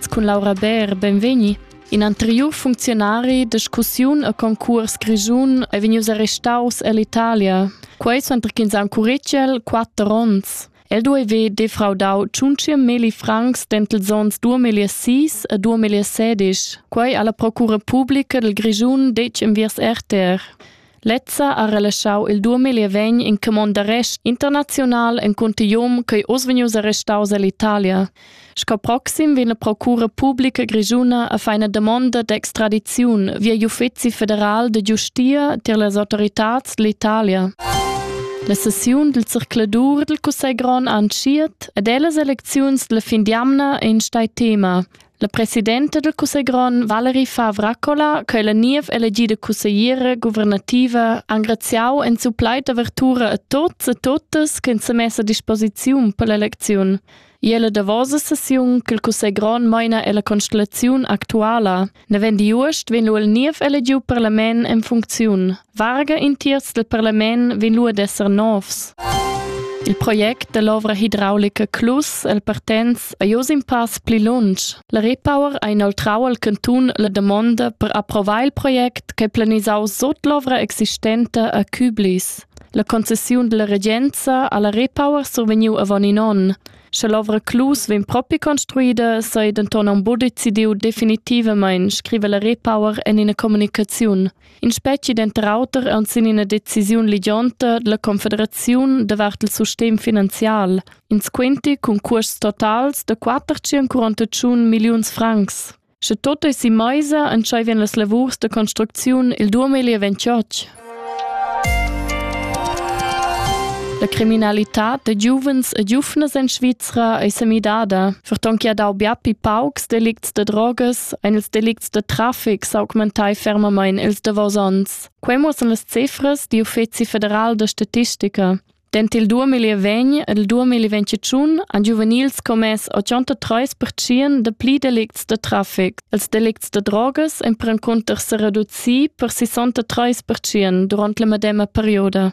cun Laura Bär, benvegni. In anteriur funcziunari discussiun a concurs grischun è vegnius arrestaus ell'Italia. Quei suenter ch'ins ha curicel quatter onns. El dueve defraudau tschunci milli francs dentels onns 2006 e 2016. Quei alla Procura Pubblica del Grischun dec enviers RTR. Lezza ha relaschau il duamilli e vegn in camond d'arrest internaziunal en cuntinuum ch'ei oz vegnius arrestaus ell'Italia. Sco proxim vegn la procura publica grischuna a far ina damonda d'extradiziun via l'Uffeci federal de giustia tier las autoritads dell'Italia. La sessiun del circladur del Cussegron anschiet ed ellas elecziuns della fin d'jamna ein stai tema. La presidenta del cussegl grond Valerie Favracola, che la niev elegida cussegliera guvernativa engraziau en su plaid d'avertura a tots e totas che se messa a disposiziun per l'eleziun. E la davosa sessiun che il cussegl grond meina è la constellazione actuala. Ne vend Iuost vegn lu el niev elegiu parlament en funcziun. Varga in tiers dal parlament vegn lu ad esser novs. Il project dall'ovra hidraulica Clus el Partenz ei oz in pass pli lunsch. La Repower ha inoltrau al cantun la damonda per approvar il project che planisau sut l'ovra existenta a Küblis. La concessiun della regenza alla Repower survegniu avon in onn. Sche l'ovra Clus vegn propi construida, sa ei denton aunc buca decidiu definitivamain, scrive la Repower en ina communicaziun. In speci denter auter aunc sin ina decisiun ligionta dalla Confederaziun davart il sustegn finanzial. Ins quinti cun cuosts totals da 441 milliuns francs. Sche tot ei si meisa, entscheivien las lavurs da construcziun il 2028. La criminalità da giuvens e giuvnas en Svizra è semidada, ferton che ha dau biapi paucs delicts da drogas ein ils delicts da traffic s'augmentai fermamein ils davos onns. Quei muossan las cifras di Uffeci federal da statistica. Dent il 2020 ed il 2021 han giuvenils commess 83% da pli delicts da traffic. Els delicts da drogas empran cunter se reducir per 63% durant la medema perioda.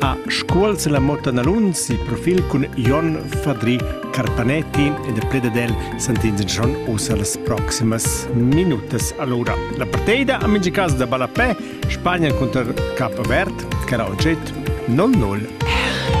a Scuol se la Motta Nalunz il profil cun Jon Fadri Carpanetti ed il pled del Sant'Inzan usa las proximas minutas. Allora, la partida a mingi caso da Balapè, Spagna contro Capo Vert, cara oggetto 0-0